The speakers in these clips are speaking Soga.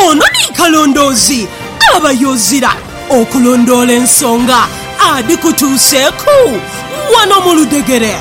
Ono ni kalondoozi aba y'ozira okulondoola ensonga adhikutuuseeku wano mu ludhegere.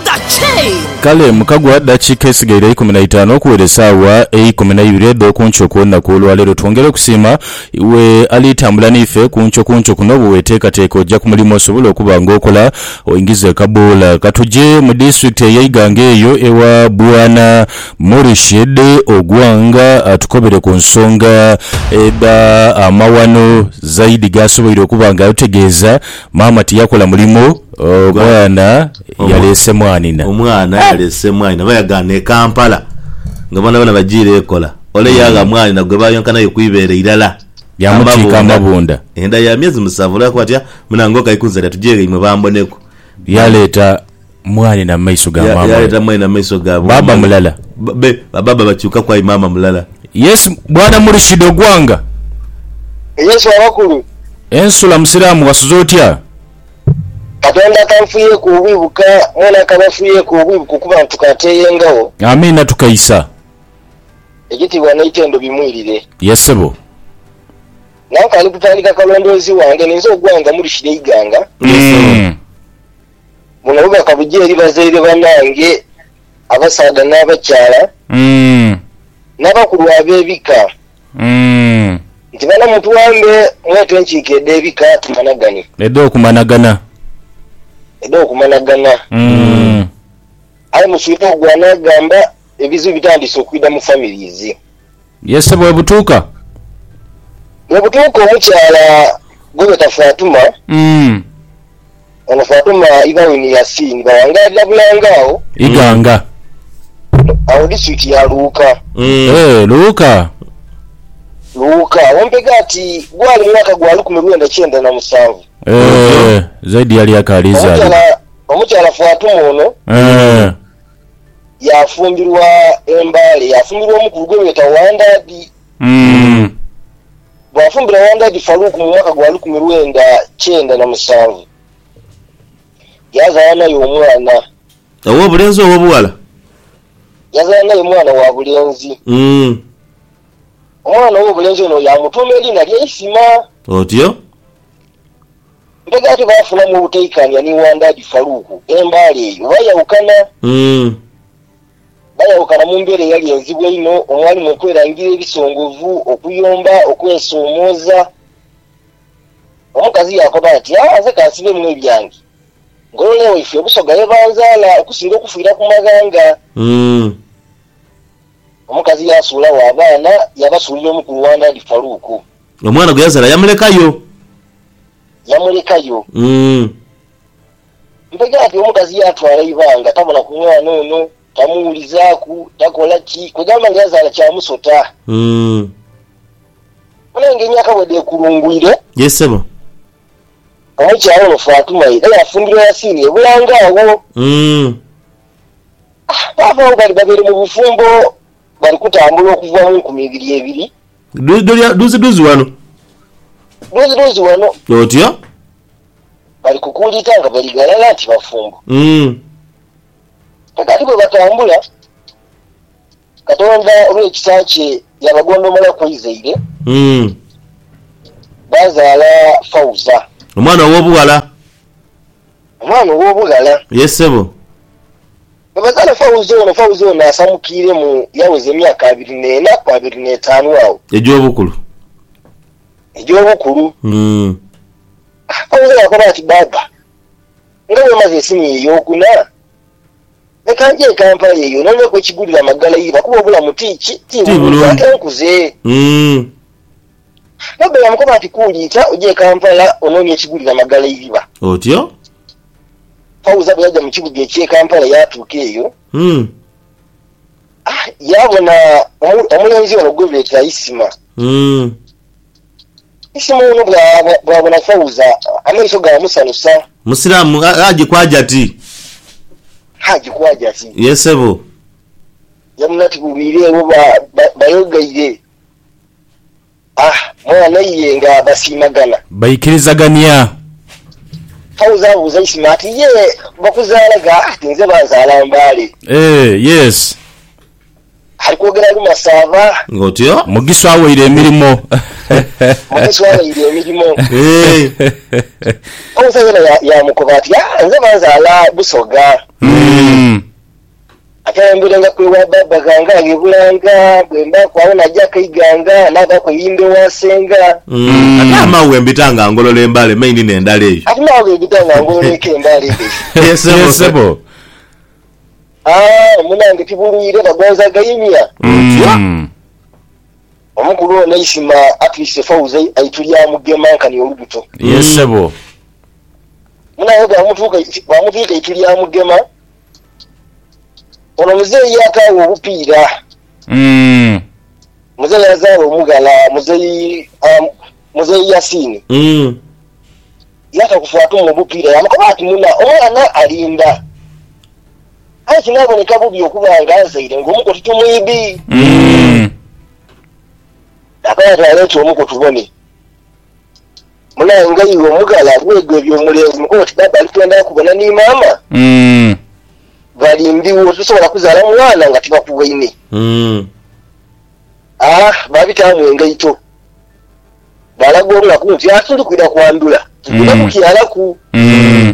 The Chain. Kale mukagwa dakiika esigaire eikumi na itaanu okuwera esaawa eikumi na ibiri edh'oku nkyo okw'olunaku olwa leero, twongera okusiima iwe ali tambula n'ife ku nkyo ku nkyo kuno. Bweweteekateeka oja ku mulimu osobole okuba nga okola oingize kaboola ka tuje mu disitulikiti ey'eighanga eyo ewa Bwana Murshed Ogwang atukobere ku nsonga edha amaghano Zaidi gaasoboire okuba nga otegeeza maama tiyakola mulimo omwana yaleese mwanina. Omwana yaleese mwanina oba yagaana e Kampala nga boonaboona bajiire ekola ole yaagha mwanina gwe baayonka naye ku ibeere irala amabunda. Enda ya myezi musanvu olwokuba ati, Munange okaikunzalira tugye ghaimwe bamboneku. Yaleeta. Mwaani na maiso ga maama we. Yaleeta mwaani na maiso ga baaba mulala. Be baaba bakyukaku aye maama mulala. Yesu, Bwana Murshid ogwanga. Yesu abakulu. Ensula musiraamu wasuze otya? Katonda akanfuyeeku obubi buka, mwena akabafuyeeku obubi buka okuba nti tukaateeyengagho. Amiina tukaisa. Ekitiibwa n'eitendo bimwirire. Ye ssebo. Nankaali kutandika kalondoozi wange ninze ogwanga Murshid Eiganga. Ye ssebo. Buno bubaka buja eri bazaire banange, abasaadha n'abakyala, n'abakulu ab'ebika, nti bana mutwambe mwete enkiiko edh'ebika tumanagane. Edh'okumanagana. Edh'okumanagana. Aye muswire ogwo anaagamba. Ebizibu bitandiise okwidha mu families. Yese bwebutuuka. Bwebutuuka omukyala gwebeeta Fatuma. Ono Fatuma ibawe ni Yasin bawangalira bulanga agho. Iganga. Agho district ya Luuka. Eeh Luuka. Luuka. Agho mpega ati gwali mwaka gwa lukumi lwenda kyenda na musanvu. Eeh zaidi yali akaali izaalibwa. Omukyala Fatuma ono. Eeh. yaafumbirwa e Mbale, yaafumbirwa omukulu gwe beeta Wandadi. Bwaafumbira Wandadi Farouk mu mwaka gwa lukumi lwenda kyenda na musanvu, yazaala naye omwana. Ow'obulenzi ow'obughala? Yazaala naye mwana wa bulenzi. Omwana ow'obulenzi ono yaamutuuma eriina lya Isima. Otyo. Mpega ate baafunamu obutaikaanya ni Wandaadi Faluuku e Mbale eyo baayawukana. Baayawukana mu mbeera eyali enzibu einho omwalimu okwerangira ebisongovu, okuyomba, okwesoomooza. Omukazi yaakoba ati, Aa nze ka nsibeemu ebyange. Ngolole waife e Busoga ye banzaala okusinga okufiira ku maghanga. Omukazi yaasuulagho abaana, yaabasuulira omukulu Wandaadi Faluuku. Omwana gwe yazaala yamulekayo. Yamulekayo. Umm. Mpegaati omukazi yaatwala eibanga tabona ku mwana ono, tamuwulizaaku, takola ki, kwegamba nga yazaala kya musota. Umm. Bona aye nga emyaka bwedheekulungwire. Ye ssebo. Omukyala ono Fatuma ye era yafumbirwa Yasiini e Bulange agho. Umm. Baava agho bali babere mu bufumbo bali kutambula okuva mu nkumi ibiri ebiri. Duzidhuzi wano. Duzidhuzi wano. Otyo. Bali kukuuliita nga bali ghalala nti bafumbo. Mm. Kakati bwe batambula, Katonda olw'ekisa kye yaabagondomola ku eizaire, Mm. baazaala Fauza, Omwana ow'obughala. omwana ow'obughala. Ye ssebo. Bwebazaala Fauzi ono, Fauzi ono asamukiiremu yaweza emyaka abiri n'ena ku abiri n'etaanu agho. Egy'obukulu. Egy'obukulu. Fauzi yaakoba ati, Baaba, nga bwe maze esiniya ey'okuna, leka nje e Kampala eyo noneku ekigulira amagala eiva kuba obulamu ti ki, ti bulungi ate nkuze. Baaba yaamukoba ati, Kuuliita oje e Kampala ononie ekigulira amagala eiva. Otyo. Fauza bwe yaja mu kibuga eky'e Kampala yaatuuka eyo, yaabona omulenzi ono gwe beeta Isima. Isima ono bwabona Fauza amaiso gaamusanusa. Musiraamu? Haji kwaja ti? Haji kwaja ti? Ye sebo. Yamuna ti bubwire ewo bayogaire. A mwana ye nga basiimagana. Baikirizagania. Fauza abuuza Isma ati, Ye bakuzaala gha? Ati, Nze banzaala Mbale. Eeh, yes. Ali kwogera luma saava. Ng'otyo. Mugiswa aweire emirimo. Mugiswa aweire emirimo. Fauza yena yaamukoba ati, Aa, nze banzaala Busoga. Ate ayemberengaku ewa baaba ghange aghe Bulanga, bwe mbaaku agho n'ajaku eighanga, naabaaku eiyumba ewa senga. Ate amawo ghe mbita nga ngolola embaale me inina endala eyo. Ate amawo ghe mbita nga ngolola eka embaale edhaife. Ye ssebo. Haa, munange tibulwire, bagonza gaimya. Otyo. Omukulu ono eisima atwise Fauza aitulya mugema nkani olubuto. Ye ssebo. Munange bw'amutwika aitulya mugema. Ono muzeeyi yaakaawa obupiira. Mm. Muzeeyi yazaala omughala muzeeyi um, muzeeyi Yasiini. Mm. Yaakakufa atuuma obupiira yaamukoba ati, Muna, omwana alinda. Aye kinaaboneka bubi okuba nga nzaire ng'omu ku tutumu ibi. Mm. Yaakaba ati, Aleete omu ku tubone. Munange iwe omughala bwegwebya omulenzi mukono ti baba ali kwenda kubona ni mama Umm. bali ndhiwo tosobola kuzala mwana nga tibakuwaine Umm. aah babitaamu engaito balaga olunaku nti aah tuli kwidha kwandhula tugenda Umm. kukyalaku. Umm.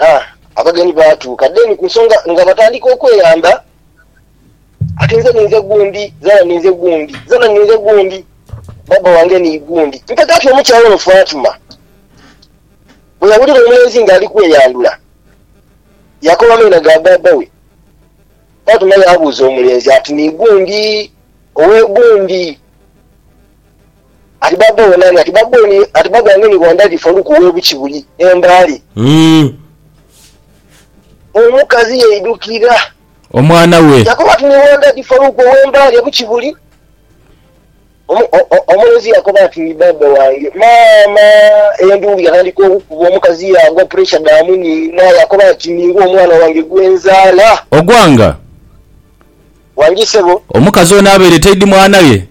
Aah abagenyi baatuuka deni ku nsonga nga batandika okweyamba ati nze ninze gundi, zana ninze gundi, zana ninze gundi, baba wange ni gundi mpaka ati omukyala ono Fatuma bwe yawulira omulenzi nga ali kweyandula yakoba amaina ga baba we. Fatuma yaabuuza omulenzi ati ni gundi, owe gundi? Ati baaba owo nani? Ati baaba oyo ati baaba wange ni Wandadi Faluku we Bukibuli e Mbale. Omukazi yaidukira. Omwana we. Yakoba ati ni Wandadi Faluku owe Mbale e Bukibuli. Omulenzi yakoba ati ni baaba wange. Maama enduulu yatandika okukuba omukazi yaagwa puresha dha muniina. Yakoba ati ningwe omwana wange gwe nzaala. Ogwanga? Wangi sebo. Omukazi ono abaire taidi mwana we.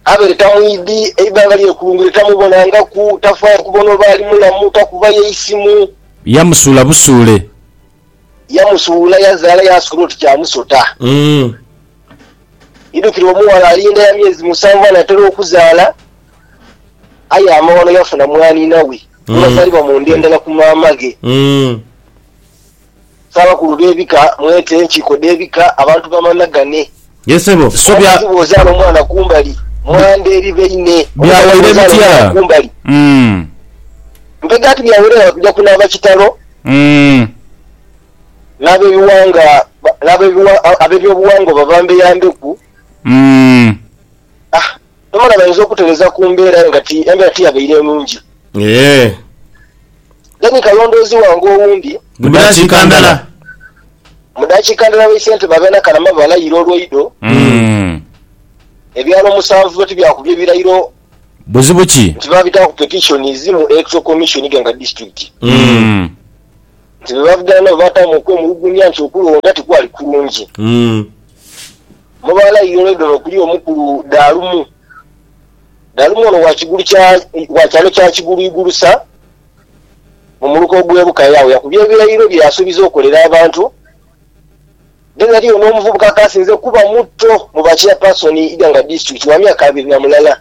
Abeli tamwidhi, eighanga lyekulungule tamubonangaku, tafaayo kubona oba ali mulamu, takubayo eisimu. Yamusuula busuule. Yamusuula yazaala yaasuula oti kya musota. Idhukira omughala alinda ya myezi musanvu anatera okuzaala, aye amaghano yafuna mwaniina we, gwe basaliba mu nda endala ku maamaghe. Ssaabakulu b'ebika, mwete enkiiko dh'ebika, abantu bamanhagane. Omukazi bw'ozaala omwana kumbali, mwandhe eri baine. Omusaadha bw'ozaala omwana kumbali, mpega ati bya wereera kuja kunaaba kitalo. N'ab'ebiwanga, n'ab'ebiwa, ab'ebyobuwangwa babambeyambeku. Omwana bayinza okutereza ku mbeera aye nga embeera tiyabaire nungi. Eeh. Then kalondoozi wange owundi. Mu dakiika ndala. Mu dakiika ndala baise ntema abeena Kalama balayira olwaido. Ebyalo musanvu byo tibyakubye birayiro. Buzibu ki? Nti babitaaku petitions mu Electoral Commission Iganga District. Nti bebavuganya nabo baataamu okwemulugunya nti okulonda tikwali kulungi. Mu baana Iolendoro okuli omukulu Dalumu. Dalumu ono wa kigulu kya wa kyalo kya Kigulu Igulu sa mu muluka ogw'e Bukaya. Agho yakubye ebirayiro bye yasuubiza okolera abantu. Then ghaliyo n'omuvubuka akaasinze kuba muto mu ba Chairperson Iganga District wa myaka abiri na mulala.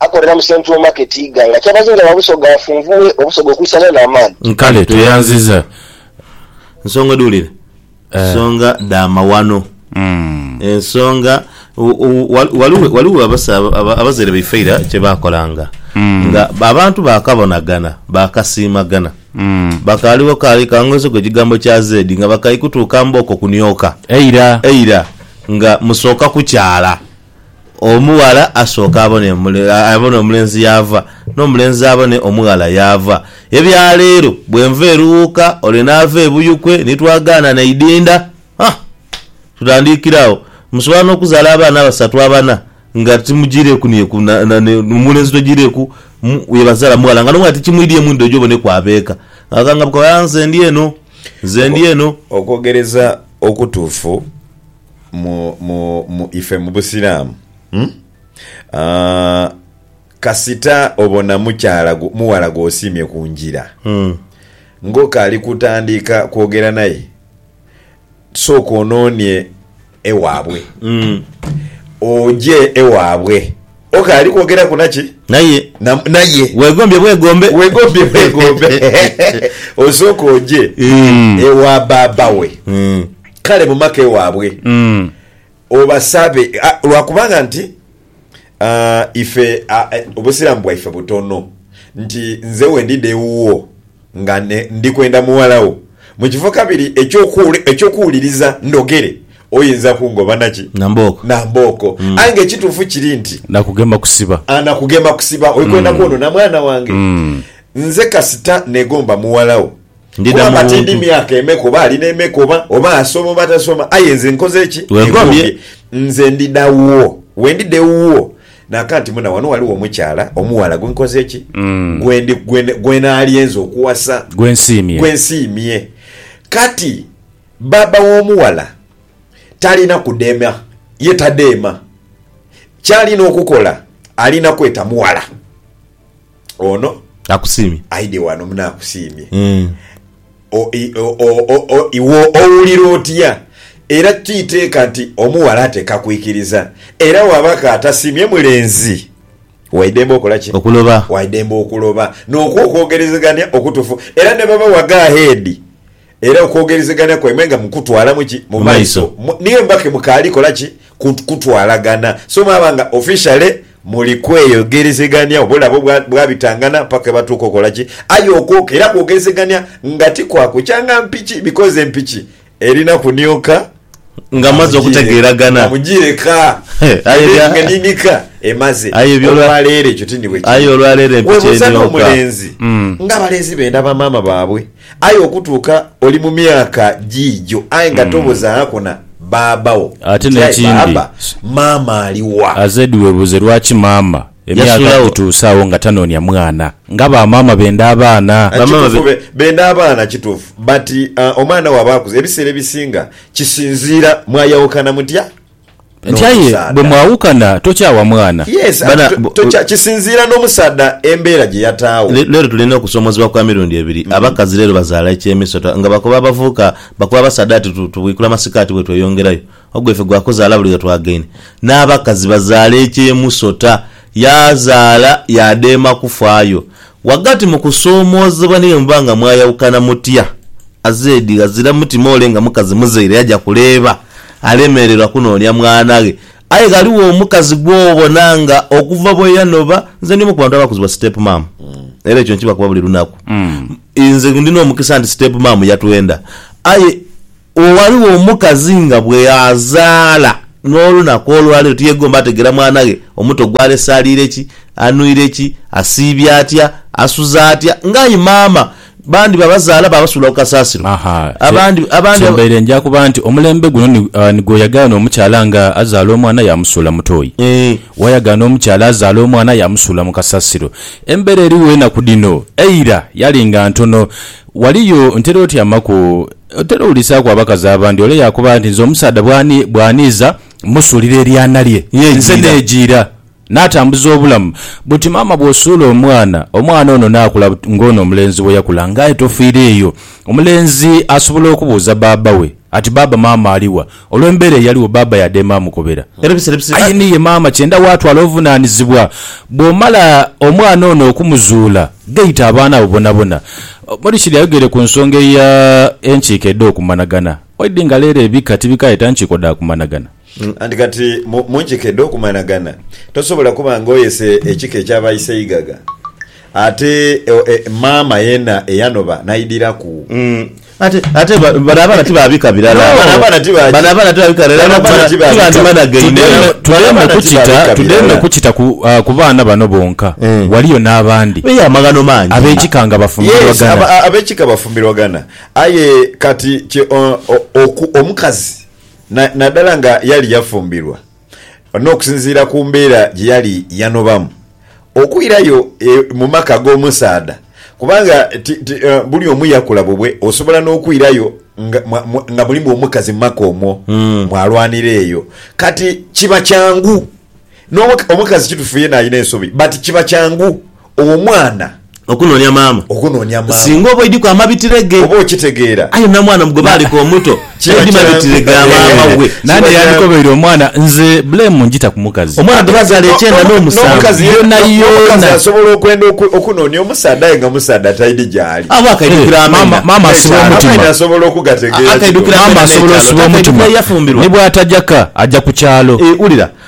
Akolera mu Central Market Iganga. Kyabazinga wa Busoga afunvughe Obusoga okwisanira n'amaani. Nkale tweyanziza nsonga edhulire nsonga dha mawano ensonga ghaligho abazaire baife eira kye baakolanga nga abantu baakabonagana baakasiimagana bakaaligho kaali ka ngozi ku ekigambo kya zeedi nga bakaikutuuka mbooko kunioka eira nga musooka kukyala Omughala asooke abone abone omulenzi yaava, n'omulenzi abone omughala yaava. Ebya leero bwenva Eruwuuka ole naava e Buyukwe ni twagaana naidinda ha! Tutandiikire agho. Musobola n'okuzaala abaana abasatu abana nga timujiireeku ni ku na na ni omulenzi tojiireeku mu ye bazaala mughala nga n'omughala tikimwidhie mwidho oje oboneku abeeka. Akangabuka ati, Aa nze ndi eno, nze ndi eno. Okwogereza okutuufu. mu, mu, mu ife mu Busiraamu, mm? Ah, kasita obona mukyala gwo, mughala gw'osiimye ku ngira, ng'okaali kutandika kwogera naye, sooka onoonie ewaabwe. Oje ewaabwe. Ok, ali kwogeraku naki? Naye. Na, naye. Weegombye bwegombe. Weegombye bwegombe. Osooke oje ewa baaba we, kale mu maka ewaabwe, obasabe, a, lwa kubanga nti, a, ife, a, Obusiraamu bwaife butono, nti nze wendi dha ewuwo. nga ndi kwenda mughala wo. Mu kifo kabiri eky'okuwuliriza ndhogere, oyinza kungoba na ki? Na mbooko. Aye ng'ekituufu kiri nti. Nakugema kusiba. Nakugema kusiba. Oli kwenda kwonona mwana wange? Nze kasita neegomba mughala wo. Kuba tindi myaka emeka oba ali n'emeka oba, oba asoma oba tasoma, aye nze nkoze ki? Weegombye. Nze ndidha wuwo. Bwe ndidha ewuwo, Naakanti muna wano ghaligho omukyala omughala gwe nkoze ki? Gwe ndi, gwe, gwe naalye nze okuwasa. Gwe nsiimye. Gwe nsiimye. Kati, bbaabba w'omughala talina kudema. Ye tadeema. Ky'alina okukola, alina kweta mughala. ono Akusiimye. aidhe wano mune akusiimye. Mm. O- i- o- o- o- o- Iwe owulira otya? Era ti iteeka nti omughala ateeka kwikiriza. Era bw'abako atasiimye mulenzi, waidembe okola ki? Okuloba. Waidembe okuloba n'okwo okwogerezegania okutufu. Era ne baba wa go ahead, era okwogerezegana kwaimwe nga mukutwalamu ki mu maiso niye muba kemukaali kola ki kutwalagana so mwaba nga officially muli kweyogerezegania oba olaba bwabitangana paka ghebatuuka okola ki aye okwoka era kwogerezegania nga ti kwa kukyanga mpiki because empiki erina kunioka. Nga mmaze okutegeeragana. Kamujiire ka. Aye ebya. Nga nini ka emaze. Aye ebyo olwa. Olwaleero ekyo tindi bwe kiri. Aye olwaleero empiki eno yonka. Weebuuza n'omulenzi. Nga abalenzi benda bamaama baabwe. Aye okutuuka oli mu myaka giigyo aye nga tobuzaako na bbaabba wo. Ate n'ekindi. Nti aye bbaabba, maama ali wa? AZ. Weebuuze lwaki maama. Emyaka gituuse agho nga tanoonia mwana nga ba maama benda abaana. Kituufu benda abaana kituufu but omwana waaba akuze ebiseera ebisinga kisinziira mwayawukana mutya Nti aye bwe mwawukana tokyawa mwana. Yes anti kisinziira n'omusaadha embeera gye yataawo. Leero tulina okusoomozebwa kwa mirundi ebiri. Abakazi leero bazaala eky'emisota nga bakoba abavubuka bakoba abasaadha ati tubwikula masikaati bwetweyongerayo. Ogwaife gwa kuzaala buli we twagaine n'abakazi bazaala eky'emusota. Yaazaala yaadema kufaayo. Ghagati mu kusoomoozebwa ni bwe muba nga mwayawukana mutya, azeedi ghazira mutima ole nga mukazi muzaire yaja kuleeba alemererwa kunoonia mwana ghe. Aye ghaligho omukazi gw'obona nga okuva bwe yanoba, nze ndi omu ku bantu abakuzibwa step mum era ekyo nkibakoba buli lunaku. Nze ndi n'omukisa nti step mum yatwenda aye. Ghaligho omukazi nga bweazaala n'olunaku olwaleero tiyegomba ategera mwana ghe omuto gwalese aliire ki, anwire ki, asiibye atya, asuza atya nga aye maama bandi babazaala babasuula ku kasaasiro abandi abandi. Kyembaire nja kuba nti omulembe guno ni nigwoyagala n'omukyala nga azaala omwana yamusuula mutoyi, wayagala n'omukyala azaala omwana yamusuula mu kasasiro. Embeera erigho enaku dhino eira yalinga ntono. Waliyo, ntera otyamaku, otera owulisaaku abakazi abandi, ole yaakoba nti, Nze omusaadha bw'ani, bw'aniiza, mmusuulira eryana lye, nze neejiira, naatambuza obulamu. Buti maama bw'osuula omwana, omwana ono naakula ng'ono omulenzi bwe yakula. Ng'aye tofiira eyo. Omulenzi asobola okubuuza baaba we ati, Baaba, maama ali wa? Olw'embeera eyaligho, bbaabba yaadheema amukobera. Aye ni ye maama kyenda waatwala obuvunaanizibwa. Bw'omala omwana ono okumuzuula, gaita abaana abo bonabona. Morishid ayogeire ku nsonga eya enkiiko edh'okumanagana. Waidhi nga leero ebika tibikaayeta nkiiko dha kumanagana. Anti kati mu nkiiko edh'okumanagana, tosobola kuba nga oyese ekika eky'aba iseigaga ate maama yeena eyanoba n'aidhiraku. Ate, ate ba- bano abaana ti ba bika birala. No, bano abaana ti ba- Bano abaana ti ba bika birala, Bano era abaana ti ba- tibandimanageine. Tudemu- Bano tudemu abaana ti okukita ba bika tudemu birala. okukita ku ah, ku baana bano bonka Eh. waliyo n'abandi Eyo amaghano mangi. ab'ekika nga Yes, bafumbirwagana aba- a- abekika bafumbirwagana aye kati kye- o- o- oku- omukazi na- naddala nga yali yafumbirwa N'okusinziira ku mbeera gye yali yanobamu, okwirayo mu maka ag'omusaadha, kubanga ti, ti, buli omu yakula bubwe, osobola n'okwirayo nga, nga mulimu omukazi mu maka omwo, mwalwanira eyo. Kati kiba kyangu, n'omukazi kitufu yeena alina ensobi, but kiba kyangu Owo mwana. Okunoonia maama. Okunoonia maama. Singa oba oidhiku amabitire ge. Oba okitegeera. Aye namwana mu gwe baaleka omuto. Kiba kyangu. Aidhi mabitire ga maama we. Naani eyandikobeire omwana? Nze blame ngita ku mukazi. Omwana gwe bazaala ekyenda n'omusanvu yoonayoona. N'omukazi asobola okwenda okunoonia omusaadha aye nga musaadha taidhi gyali. Abo akaidhukira amena. Maama asiba omutima. Amaini asobola okugategeera kino. Maama asobola osiba omutima. Ni bwataja ka aja ku kyalo. Wulira,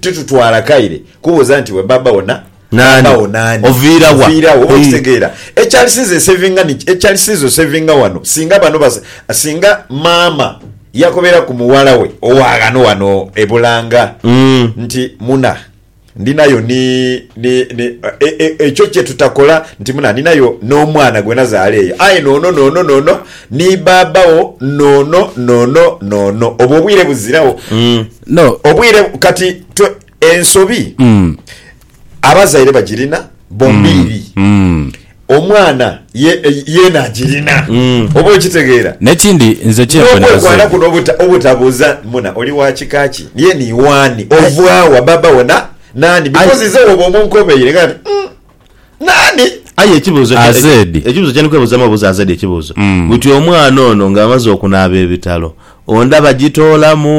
Titutwala kaire kubuuza nti, We Bbaabba wo na? Bbaabba wo naani? Oviira wa? Oviira wa? Oba okitegeera ekyalisiiza ensevinga niki? Ekyalisiiza osevinga wano singa bano ba, singa maama yakobeera ku mughala we owa ghano wano e Bulanga nti, Muna, ndinayo ni, ni, ni, e, e, ekyo kye tutakola, nti, Muna, ndinayo n'omwana gwe nazaala eyo, aye n'ono, n'ono, n'ono, ni bbaabba wo, n'ono, n'ono, n'ono. Obwo obwire buziragho. No. Obwire kati twe ensobi abazaire bagirina bombiiri. Omwana ye yeena agirina. Oba okitegeera? N'ekindi nze kye nfuna bazaire. N'okwekwala kuno obuta obutabuuza muna oli wa kika ki? Ye ni w'ani? Ova wa? Baba wo na naani? Because ize wooba omunkobeire nga nti, Umm. Naani? Aye ekibuuzo kye, AZ. ekibuuzo kyendi kwebuuzamu obuuza AZ ekibuuzo buti omwana ono nga amaze okunaaba ebitalo onda bagitoolamu?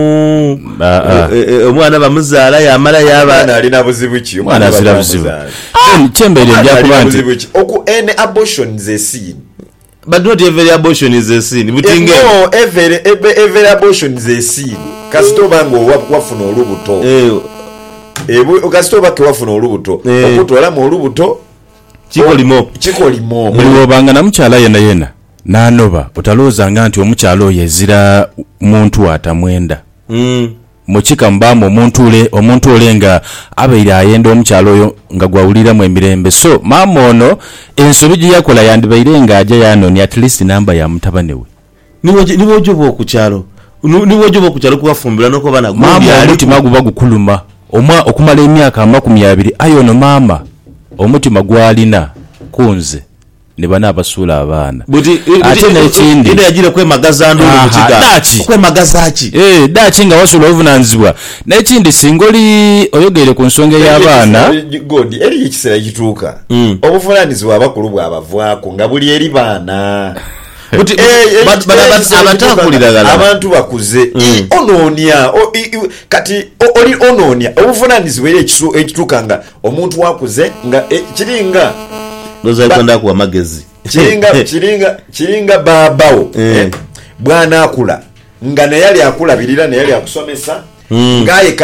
Aa. E- e- e- Omwana bamuzaala yamala yaba Omwana alina buzibu ki? Omwana azira buzibu. Then kyembaire Omwana alina ndyakuba nti buzibu ki? Oku, ene abortions esin. But not every abortion is a sin buti nga eno. No every every abortion is a sin kasita oba nga owa wafuna olubuto Eeh ebu kasita oba ke wafuna olubuto Eeh okutolamu olubuto o Kikolimo kikolimo Buli muli. bwobanga na mukyala yena yena nanoba otalowoozanga nti omukyala oyo ezira muntu atamwenda. Uhmm. Mu kika mubaamu omuntu ole, omuntu ole nga abaire ayenda omukyala oyo nga gwawuliramu emirembe. So, maama ono ensobi gye yakola yandibaire nga aja yaanoonia at least namba ya mutabane we. Ni bwoja oba oku kyalo, ni bwoja oba oku kyalo ku wafumbirwa n'oku abaana gwo Maama omutima byaliku. guba gukuluma omwa okumala emyaka amakumi abiri aye ono maama omutima gw'alina ku nze. ni bane abasuula abaana. Buti, buti, Ate n'ekindi. Ida yajiire kwemagaza nduulu mu Aha, kiga. daki? Okwemagaza ki? Eeh, daki nga wasuula obuvunanizibwa? N'ekindi singa oli oyogeire ku nsonga Eriyo ey'abaana. ekiseera, God, eriyo ekiseera ekituuka obuvunanizibwa abakulu bwabavaaku nga buli eri baana. Buti, buti, Eeh, eriyo bano aba- ekiseera ekituuka nga abataakulira ghalala. abantu bakuze. Ii, onoonia, o- i- i- kati o- oli onoonia obuvunanizibwa eriyo ekisu- ekituuka nga Omuntu akuze nga e, kiri nga. Ndhooza ali kwenda kuwa magezi. Kiri nga, kiri nga, kiri nga baaba wo Eh. e, bw'anaakula nga naye ali akulabirira, naye ali akusomesa, nga aye ka.